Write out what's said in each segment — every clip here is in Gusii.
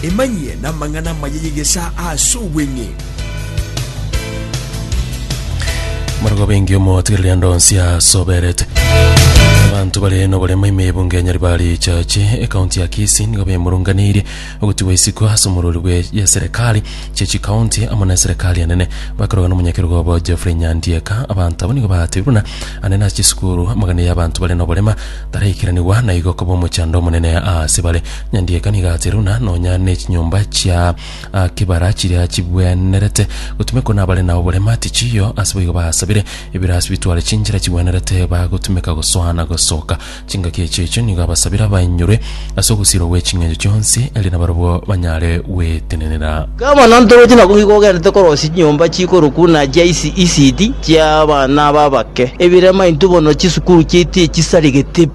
Emanyie namang'ana amaya y'egesaa aase obweng'e. Marogo bengi omotigereri ande onsi asoberete. Abanto bare noborema ime y'ebunge ya Nyaribari Chache, ekaunti ya Kisii nigo bemurunganirie ogotigwa isiko ase omorwori bwe y'eserekari chia chikaunti amo na eserekari enene. Bakorwa nomonyakerogo obo Geoffrey Nyandieka, abanto abo nigo batebi buna ande nase chisukuru amagana y'abanto bare noborema Taraikeranigwa na igo koba omochando omonene aase bare. Nyandieka nigo aase runa nonya nechinyomba chia ah, kibara chiria chigwenerete gotumekwa nabare nao borema tichiyo ase boigo basabire ebirasi bitware chinchera chigwenerete bagotumeka gosoa na gosoka chingaki echi echo nigo abasabire abainyurwe Ase ogosirwa gwe ching'encho chionsi, erio nabarabwo banyare gwetenenera. Gavana o Ntogochia nabo igo ogenderete korosia chinyomba chikorokwa na chia isi isidi chia abana aba abake, ebirema intwe bono chisukuru chiaito echisaregete pi.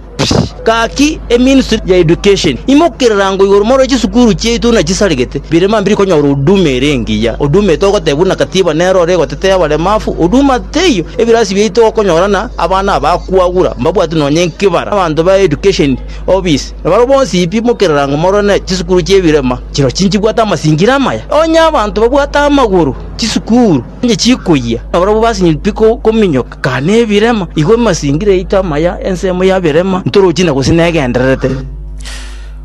Gaki eministry ya education imokererango igoro moro chisukuru chiaito buna chisaregete, birema mbiri konyora huduma ere engiya, huduma etogoteba buna katiba nero ore egotetea abaremafu, huduma teiyo, ebirasi biaito okonyora na abana aba kwagura mbabwati nonye nkibara, abanto ba education. Obis. Na barabwo bonsi pi mokerera ng'a morwane chisukuru chi'ebirema, chirochio chinchibwate amasingira amaya. Onye abanto babwate amagoro, chisukuru inche chikoyia, na barabwo basinyeti pi kominyoka, kare nebirema. Igo amasingira yaito amaya, ensemo ya birema, ntorochi na gose negendererete.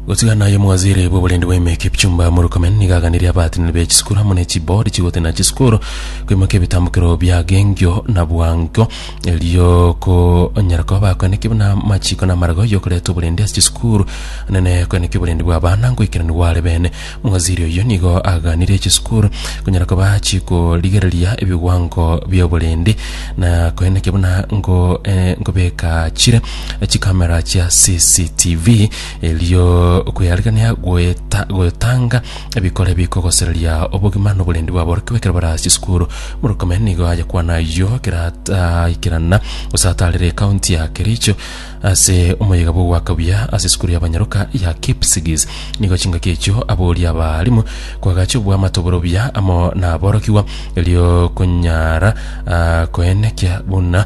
Gotiga naye omwaziri bw'oborindi bw'ime Kipchumba Murkomen nigo aganirie abaatanani be chisukuru amo ne chiboard chigotena chisukuru koimokia ebitambukero bi'agengio na bwango. Erio konyara koba bakweneki buna amachiko na amaraga y'okoreta oborende ase chisukuru, nene kweneki oborende bw'abana ngoikerania gware bene. Omowaziri oyio nigo aganire chisukuru konyara koba chikorigereria ebigwango bi'oborende na koenekia buna ngo eh, nkobeka chire chikamera chia CCTV erio okweyarigania goeta gotanga Ebikore bikogosereria obogima noborendi bw'aborokia ekero bare ase chisukuru. Murkomen nigo aye kwana ayio ekero ataikerana gose ataarire ekaunti ya Kericho ase omoyega bw'ogoaka buya ase esukuru y'abanyaroka ya Kipsigis. Nigo chingaki echio aboria abaalimu kwagacha obwamate obore obuya amo naborokigwa erio konyara ah, koenekia buna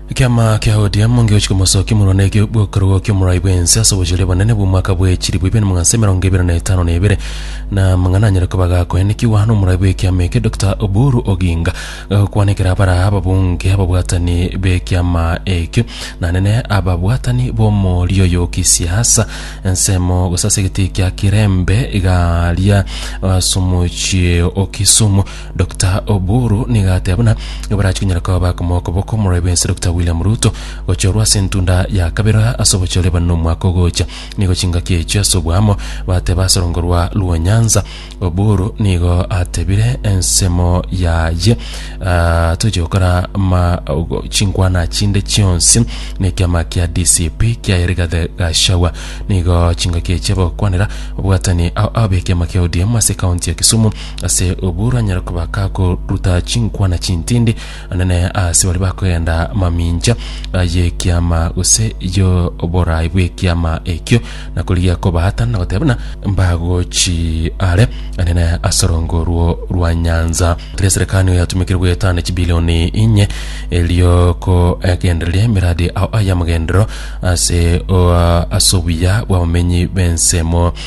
Ekiama kia ODM ngegochia komosokia murwa na ekio bw'okorogwa ki'omorai bw'ense ase obochori obonene bw'omwaka bwe chilifu ibere na magana ase emerongo ebere na etano na ebere, na amang'ana anyare koba gakoenekigwa n'omorai bw'ekiama eke Dokita Oburu Oginga gagokwanekera baraa ababunge ababwatani b'ekiama ekio, naende ne ababwatani b'omorio oyo o kisiasa. Ensemo gose ase egetii kia Kirembe iga aria ase omochie o Kisumu. Dokita Oburu nigo ateba buna nibarachie konyara koba bakomoa okoboko omorwaire bwensi Dokita William Ruto gochorwa ase entunda ya kabere ase obochore eba na omwaka ogocha. Nigo chingaki echio ase obwamo bateba ase orongo rwa Luo Nyanza. Oburu nigo atebire ensemo yaye ah, tochia gokora ma ogo- chinkwana chinde chionsi na ekiama kia DCP kiaye Rigathi Gachagua. Nigo chingaki echio bagokwanera obwatani ao abe ekiama kia ODM ase kaunti ya Kisumu Ase obwo rwanyare koba kakoruta chinkwana chintindi anene ase baria bakogenda mamincha y'ekiama gose y'oboraai bw'ekiama ekio, na korigia kobaatana na goteba buna mbagochi are anene ase orongo orwo rwa nyansa. Tari eserekani yatumekire goetana chibilioni inye erio kogendereria emeradi ao y'amagenderero ase o- ase obuya bw'abamenyi b'ensemo.